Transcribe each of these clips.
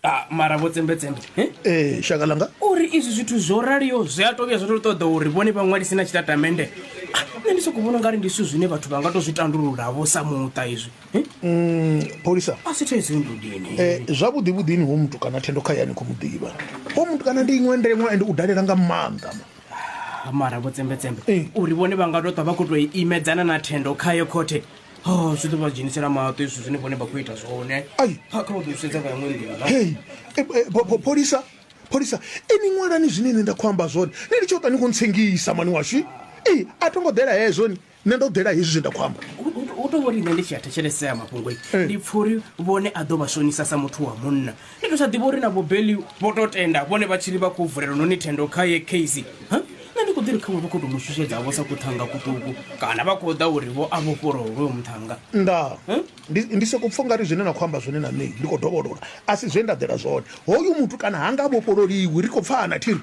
Ah, mara vho tsembetsembe eh? ee shaka langa uri izwi zwithu zwo raliho zwi a tovhuya zwo to ṱoḓa uri vhone vha ṅwalise na tshitatamende Ah, nṋe ndi sokou vhona ungari ndi zwithu zwine vhathu vha nga to zwi tandululavo sa muṱa izwi eh? Mm, pholisa a si thaidzo ndudini Eh, zwavhuḓi vhuḓini ho muthu kana thendo kha yani khou mu ḓivha ho muthu kana ndi iṅwe ndengwa ende u dalela nga maanḓa mara vho tsembetsembe Eh. uri vhone vha nga to ṱwa vha khou to imedzana na thendo khayo khothe ha zwi ḓo vha dzhenisela maṱo izwi zwine vhone vha khou ita zwone Ai. kha kha vha ḓo sedza nga yaṅwe nḓila hei e, e, pho- pho- pholisa pholisa ini ṅwalani zwine nṋe nda khou amba zwone ni litshe u ṱwa ni khou ntsengisa mani washu ee a tho ngo ḓela hezwo ni nṋe ndo ḓela hezwi zwe nda khou amba U- u- u tou vhori nṋe ndi tshi a thetshelesea mafhungo Eh. ndi pfha uri vhone a ḓo vha shonisa sa muthu wa munna Ni ḓo sa ḓivha uri na vho Beli vho to tenda vhone vha tshiri vha khou vulela noni thendo kha ye case. Ha? Nṋe ndi khou ḓi ri khaṅwe vha khou tou mu shushedza vho sa kuṱhanga kuṱuku kana vha khou ḓa uri vho a vhofholowe hoyo muṱhanga. Nda Hm? ndi ndi soko pfha ungari zwine na khou amba zwone na nṋe ndi khou dovholola a si zwe nda ḓela zwone hoyu muthu kana ha nga vhofhololiwi ri khou pfana thiri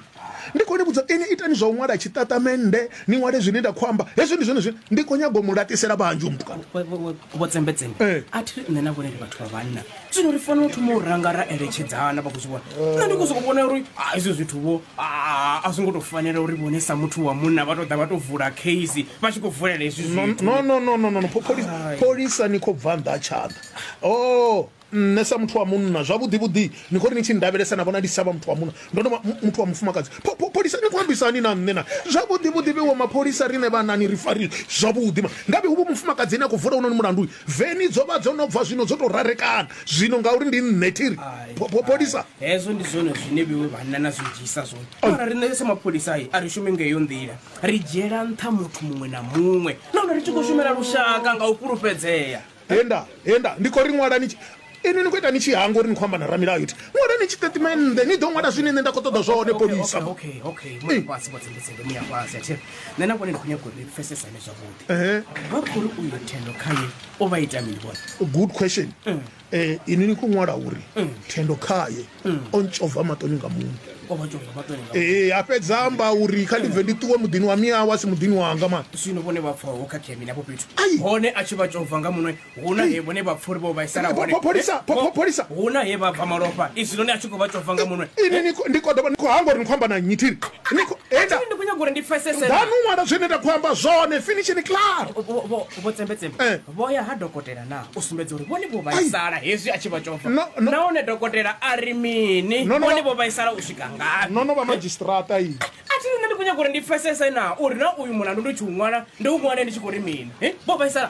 Ndi khou ni vhudza inwi, itani zwa u ṅwala tshiṱatamennde, ni ṅwale zwine nda khou amba. Hezwi ndi zwone zwine ndi khou nyaga u mu laṱisela vhanzhi hoyu mutukana. Vho- vho- vho- vho tsembetsembe Ee. a thi ri nṋe na vhone ndi vhathu vha vhanna zwino ri fanela u thoma u ranga ra eletshedzana vha khou zwi vhona nṋe ndi khou sokou vhona uri ah, hezwi zwithu vho ah, a zwi ngo tou fanela uri vhone sa muthu wa munna vha tou ḓa vha tou vula case vha tshi khou vulela hezwi No, zwithu no, no, no, no, no, no. Pho- pholisa- Pholisa ni khou bva nnḓa ha tshanḓa. Oh, Nṋe sa muthu wa munna, zwavhuḓi-vhuḓi, ni khou ri ni tshi nndavhelesa na vhona ndi si tsha vha muthu wa munna, ndo no vha muthu wa mufumakadzi. Pho, pho, pholisa, ni khou ambisa hani na nṋe naa? Zwavhuḓi-vhuḓi, vheiwa mapholisa, riṋe vhanna a ni ri fari zwavhuḓi ma. Ngavhe hu vhu mufumakadzi ane a khou vula hounoni mulandu. Veni dzo vha dzo no bva zwino, dzo tou rarekana zwino ngauri ndi nṋe. Thi ri, Pho, pho, pholisa. Hezwo ndi zwone zwine vheiwe vhanna na zwi dzhiisa zwone. Mara riṋe sa mapholisa a ri shumi nga heyo nḓila. Ri dzhiela nṱha muthu muṅwe na muṅwe nahone ri tshi khou shumela lushaka nga u fhulufhedzea. henda henda ndi khou ri ṅwalani tshi- inwi ni khou ita ni tshi hanga uri ni khou amba na ramilayo ti ṅwalani tshitatimennde ni ḓo ṅwala zwine nṋe nda khou ṱoḓa zwone polisa okay okay Eh. muya fhasi vhotsengesenge muya fhasi athi nṋe na vhone ndi khou nyaga uri ni pfesesane zwavhuḓi Ehe. vha khou ri uyo thendo khaye o vha ita mini vhone good question Eh, inwi ni khou ṅwala uri thendo khaye o ntshova maṱoni nga muṋe ee a fhedza amba uri kha ndi bve ndi ṱuwe muḓini wa miyawe a si muḓini wanga mani zwino vhone vha pfha ho khakhea mini afho fhethu Ai. hone a tshi vha tshova nga muṅwe huna he vhone vha pfha uri vho vhaisala hone Pho- pholisa, pho- pho- pholisa. huna he vha bva malofha izwi noni a tshi khou vha tshova nga muṅwe ini ni khou- ndi khou ḓovha ni khou hangwa uri ni khou amba na nnyi thiri Ni khou- enda Thiri, ndi khou nyanga uri ndi pfesese ḓanu ṅwala zwine nda khou amba zwone finishini claro vho tsembetsembe Eh. Vho ya ha dokotela na u sumbedza uri vhone vho vhaisala hezwi a tshi vha tshova. No, no. Nahone dokotela a ri mini? No, no, Vhone no. vho vhaisala u swika ngafhi? no no vha madzhisiṱiraṱa iyi A thi nṋe ndi khou nyaga uri ndi pfesese na uri na uyu mulandu ndi tshi u ṅwala ndi u ṅwale ndi tshi khou ri mini? Eh, Vho vhaisala.